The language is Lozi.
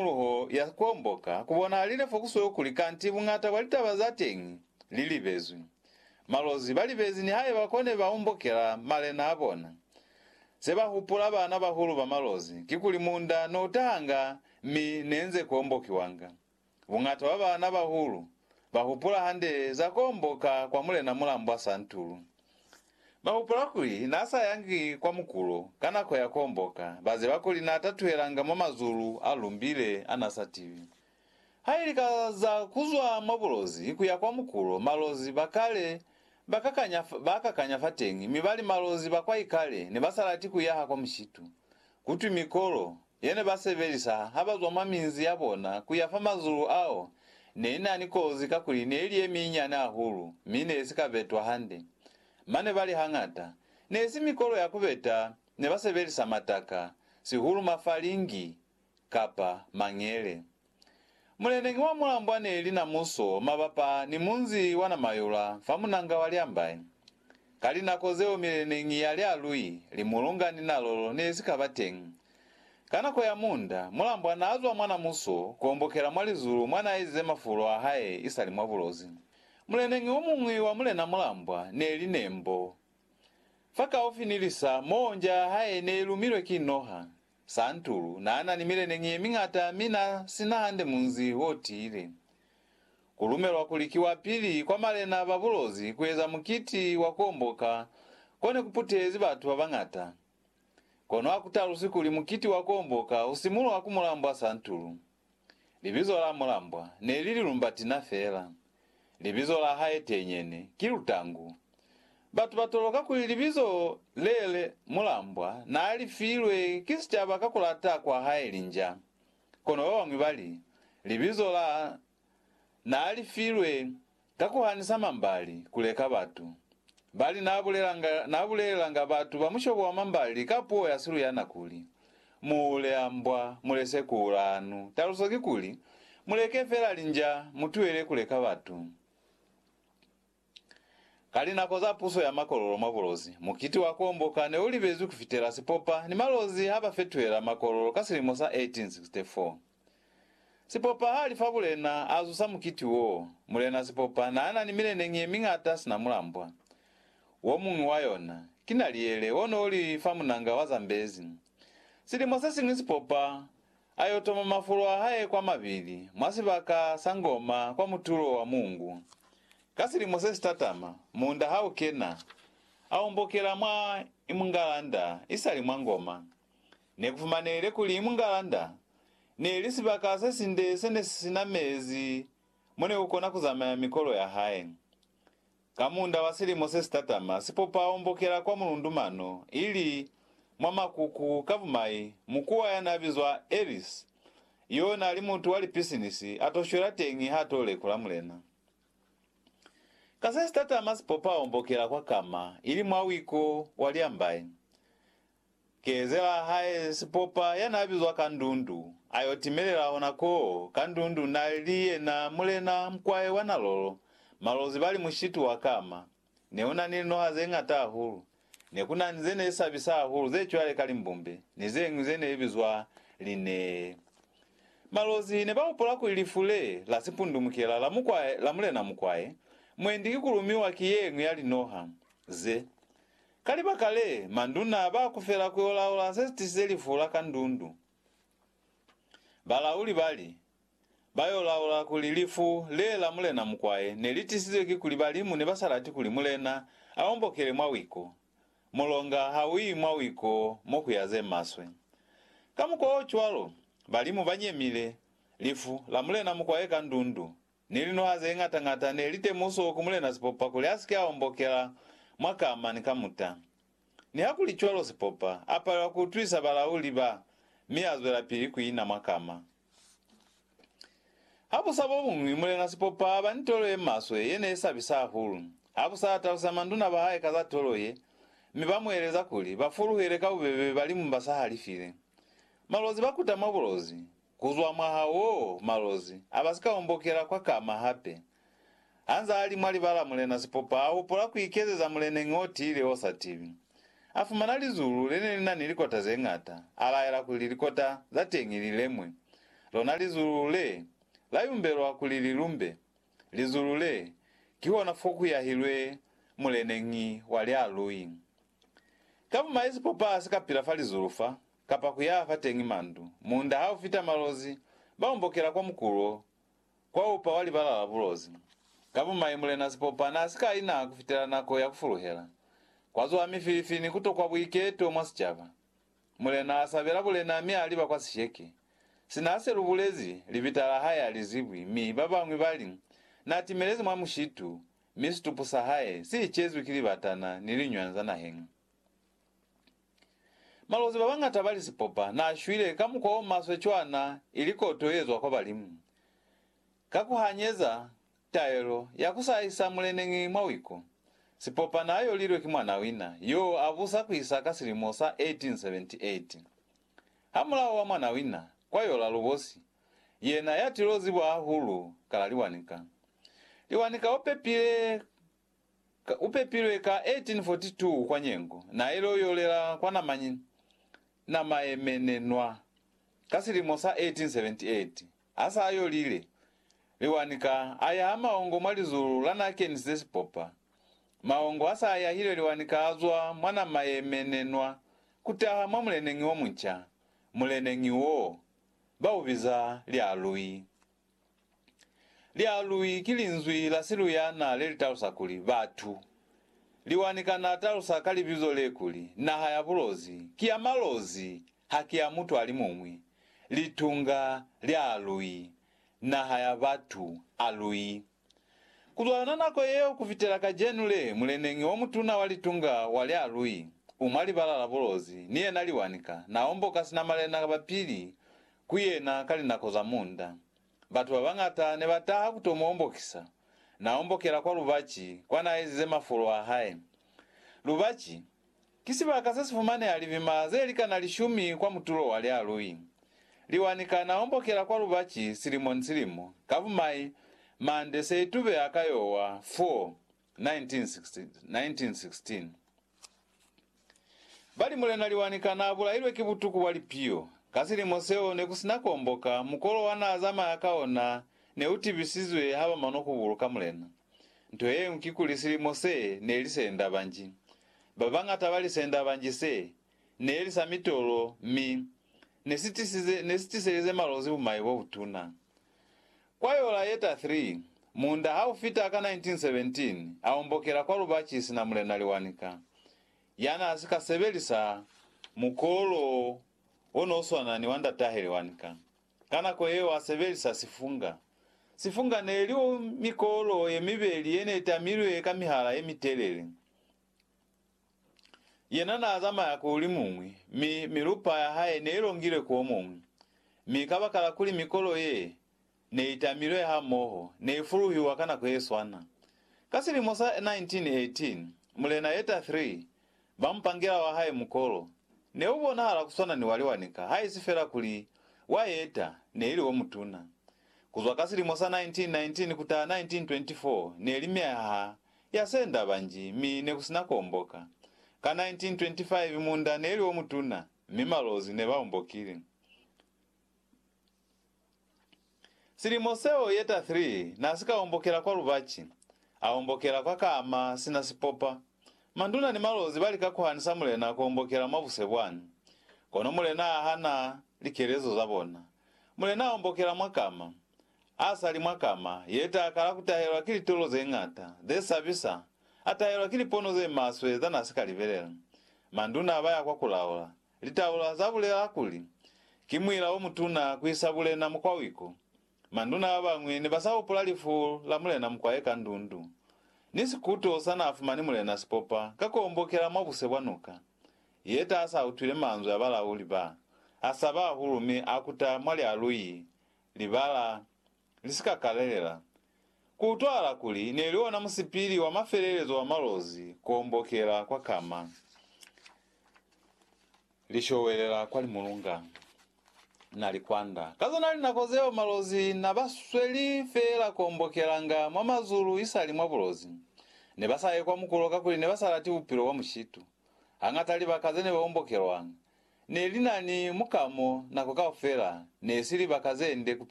Luho ya komboka kubona lile fokusweo kuli kanti bungata bwa litaba za teñi li libezwi. Malozi ba libezi nihaiba kone ba ombokela malena a bona. Se ba hupula bana bahulu ba malozi kikuli munda no tahanga mi ne nze ku ombokiwanga. Bungata bwa bana bahulu ba hupula hande za ku omboka kwa Mulena Mulambwa Santulu. Ba hupula kuli n'a sa yangi kwa mukulu ka nako ya komboka, ba ziba kuli n'a tatuhelanga mwa mazulu a lumbile a n'a sa tiwi. Ha ili ka za ku zwa mwa bulozi ku ya kwa mukulu, malozi ba kale ba kakanya, ba kakanya fateñi mi ba li malozi ba kwaikale ne ba sa lati ku yaha kwa mushitu, kutwi mikolo, ye ne ba sebelisa ha ba zwa mwa minzi ya bona ku ya fa mazulu ao ne i na ni kozi kakuli ne i li ye minyane hahulu mi ne i si ka betwa hande. Mane ba li hañata ne i si mikolo ya ku beta ne ba sebelisa mataka, sihulu mafalingi kapa mangele. Muleneñi wa mulambwa neli na muso mabapa ni munzi wa Namayula fa munanga wa Lyambai. Ka linako zeo mileneñi ya Lyalui, Limulunga ni Nalolo nesika ba teñi. Ka nako ya muunda, mulambwa naazwa mwa na muso kuombokela mwa lizulu mwa naaezize mafulo ahae isali mwa bulozi. Muleneñi omuñwi wa mulena mulambwa neli Nembo. Fakaufi ni lisa moo nja yahae neilumilwe ki noha. Santulu na na ni mileneñi ye miñata mi na si na hande munzi o tiile. Ku lumelwa kuli ki wa pili kwa malena ba bulozi ku eza mukiti wa ku omboka ko ne ku putezi batu ba bañata. Kono ha ku talusi kuli mukiti wa ku omboka u simulwa ku mulambwa Santulu. Libizo la mulambwa ne li Lilumbatina fela. Libizo la hae tenyene ki Lutangu. Batu ba toloka kuli libizo le le mulambwa n'a li filwe ki sicaba ka ku lata kwa hae linja. Kono ba bañwi ba li, libizo la n'a li filwe Ka ku hanisa mambali, ku leka batu. Bali n'a bulelanga, n'a bulelelanga batu ba mushobo wa mambali ka puo ya Siluyana kuli, Mu hule a mbwa, mu lese ku ula hanu. Taluso ki kuli, Mu leke fela linja, mu tuele ku leka batu. Ka linako za puso ya makololo mwa bulozi, mukiti wa komboka ne u libezwi ku fitela sipopa ni malozi ha ba fetuhela makololo ka silimo sa 1864. Sipopa ha li fa mulena a zusa mukiti wo, mulena sipopa n'a na ni mileneñi ye miñata sina mulambwa. Wo muñwi wa yona, ki naliyele o n'o li fa munanga wa Zambezi. Silimo se siñwi sipopa a y'o toma mafulo a hae kwa mabili mwa sibaka sa ngoma kwa mutulo wa muungu. Ka silimo se si tatama, muunda ha u kena, a ombokela mwa i mungalanda isali mwa ngoma. Ne ku fumanehile kuli Mungalanda ne li sibaka se sinde se ne si sina mezi mo ne ku kona ku zamaya mikolo ya hae. Ka munda wa silimo se si tatama, sipopa o mbokela kwa mulundu mano, ili mwa makuku ka bumai, mukuwa ya n'a bizwa Ellis, y'o n'a li mutu wa lipisinisi, a t'o shwela teñi h'a t'o lekula Mulena. Ka se si tatama sipopa o mbokela kwa kama, ili mwa wiko wa liambai. Keezelaa hae sipopa ya n'a bizwa Kandundu a y'o timelela hona koo. Kandundu n'a li yena mulena mukwae wa Nalolo. Malozi ba li mushitu wa kama. Ne u na ni linoha ze ñata hahulu. Ne ku na ni ze ne sabisa hahulu ze cwale ka limbumbe ni ze ñwi ze ne bizwa linee. Malozi ne ba hopola kuli lifu le la sipundumukela la mukwae, la mulena mukwae, mwendi ki ku lumiwa ki ye ñwi ya linoha ze. Ka libaka le, manduna ba kufela ku yo laula se si tisize lifu la kandundu. Balauli ba li, Ba yo laula kuli lifu le la Mulena Mukwaye ne li tisizwe ki kuli balimu ne ba sa lati kuli Mulena a ombokele mwa wiko. Mulonga ha u yi mwa wiko mo ku ya ze maswe. Ka mukwa o cwalo, balimu ba nyemile lifu la Mulena Mukwaye kandundu. Ni linwaha ze ñata ñata ne li temuso ku Mulena Sipopa kuli a si ke a ombokela mwa kama ni kamuta. Nihakulicwalo Sipopa a palelwa ku utwisa balauli ba mi a zwelapili ku ina mwa kama. Habusa bo buñwi, Mulena Sipopa a ba ni tolo ye maswe ye ne i sabisa hahulu. Habusa a talusela manduna ba hae ka za tolo ye, mi ba mu eleza kuli ba fuluhele ka bubebe balimu ba sa halifile. Malozi ba kuta mwa bulozi, Kuzwa mwaha woo, malozi abasika ombokela kwa kama hape. Hanzaa ali mwa libala Mulena Sipopa aupola kuikezeza muleneñi otiile osa tibi. Afumana lizulu lene linani likota zeñata, alaela kuli likota zateñi lilemwe. Lona lizulu le, layumbelwa kuli lilumbe. Lizulu le, kihona fokuyahilwe muleneñi wa lialui. Ka bumai Sipopa asika pila fa lizulu fa, kapa ku yaha fateñi mandu. Munda ha u fita malozi, ba ombokela kwa mukulo, kwa upa wa libala la bulozi. Ka bumai, Mulena Sipopa n'a si ka ina ku fitela nako ya ku fuluhela. Kwa zuha mifilifi ni ku tokwa buiketo mwa sicaba. Mulena a sabela bulena mi a liba kwa sisheke. Sina a se lu bulezi, libita la hae a li zibwi mi ba bañwi ba li, N'a timelezi mwa mushitu, mi situpu sa hae si icezwi ki libatana ni liñwanza naheñi. Malozi babañata bali sipopa naashwile ka mukwa omaswe cwana ili koto yezwa kwa balimu, ka kuhanyeza taelo ya kusaisa muleneñi mwa wiku. Sipopa naayolilwe ki mwanawina yoo abusa kuisa ka silimo sa 1878. Hamulaho wa mwanawina kwayola lubosi, yena yatilozi bwahahulu kala Liwanika. Liwanika opepile Ka upepilwe ka 1842 kwa Nyengo, nailo yolela kwa Namanyi namaemenenwa ka silimo sa 1878. Asa ayolile, Liwani ka aya ha maongo mwa lizulu lanakenisize sipopa. Maongo asa ayahile liwani ka azwa mwa namaemenenwa kutaha mwa muleneñi omunca. Muleneñi wo, baubiza Lialui Lialwi ki linzwi la Siluyana le li talusa kuli, batu. Liwani kana talusa ka libizo le kuli, naha ya bulozi, ki ya malozi, ha ki ya mutu a li muñwi. Litunga, lialwi, naha ya batu, alwi. Kuzwala na nako yeo kufitela kacenu le, muleneñi omutuna wa litunga wa lya Lui, umwa libala la bulozi, ni yena liwanika, na omboka sina malena ba pili ku yena ka linako za munda. Batu ba bañata ne ba taha ku to mu ombokisa. Na ombokela kwa lubaci, kwa na ezize mafolo a hae. Lubaci. Ki sibaka se si fumaneha libima ze li kana lishumi kwa mutulo wa lialui. Liwa ni kana ombokela kwa lubaci silimo ni silimo, ka bumai, mande se itubeha ka yowa, Four, 1916. Bali Mulena Liwa ni kana a bulailwe ki butuku bwa lipiyo. Ka silimo seo ne ku sina ku omboka, mukolo wa n'a zamaya ka ona ne u tibisizwe ha ba manokubulu ka Mulena. Nto yeñwi kikuli silimo se neli senda banji. Babañata ba lisenda banji se neli sa mitolo mi nesitisize nesitiselize malozi bumai bobutuna. Kwa yola ye ta 3, muunda haufita ka 1917 aombokela kwa lubaci sina Mulena Liwanika, yanaasika sebelisa mukolo wo no swana ni wa ndatahe Liwanika. Ka nako yeo a sebelisa sifunga. Sifunga ne li mikolo ye mibeli ye ne tamilwe ka mihala ye mitelele. Yena n'a zamaya ku li muñwi, mi milupa ya hae ne i longilwe ku o muñwi. Mi kabakala kuli mikolo ye ne i tamilwe hamoho ne i fuluhiwa ka nako ye swana, ka silimo sa 1918, mulena Yeta ii Ba mupangela wa hae mukolo ne u bonahala ku swana ni wa liwanika haisi fela kuli wa yeta ne ili o mutuna. Ku zwa ka silimo sa 1919 ku taha 1924 ne li myaha ya senda banji mi ne ku si na ku omboka. Ka 1925 munda ne li o mutuna mi malozi ne ba ombokile. Silimo seo ye ta Three na si ka ombokela kwa lubaci, a ombokela kwa kama sina sipopa. Manduna ni malozi ba lika ku hanisa mulena ku ombokela mwa buse bwani, kono mulena a hana likelezo za bona. Mulena a ombokela mwa kama, a sa li mwa kama ye ta kala ku tahelwa ki litolo ze ñata, ze sabisa, a tahelwa ki lipono ze maswe za na si ka libelela. Manduna ba ya kwa ku laola, Litaula za bulela kuli, Ki muila o mutuna ku isa bulena mukwawiku. Manduna ba bañwi ne ba sa hupula lifu la mulena mukwaye ka ndundu, ni sikuto sa n'a fumani mulena si popa ka k'o mbokela mwa buse bwa nuka. Yeta a sa utwile manzwi a balauli ba, a saba hahulu mi a kuta mwa lialuyi, libala, li si ka kalelela. Ku utwahala kuli ne li ona musipili wa mafelelezo wa malozi k'o mbokela kwa kama. Li showelela kwa limulunga, na li kwanda. Ka zona linako zeo malozi na ba sweli feela kombokelanga mwa mazulu isali mwa bulozi. Ne ba sa ye kwa mukulo kakuli ne ba sa lati bupilo bwa mushitu. Hañata libaka ze ne ba ombokelwanga ne li na ni mukamo nako kaufela, ne si libaka ze nde ku pila.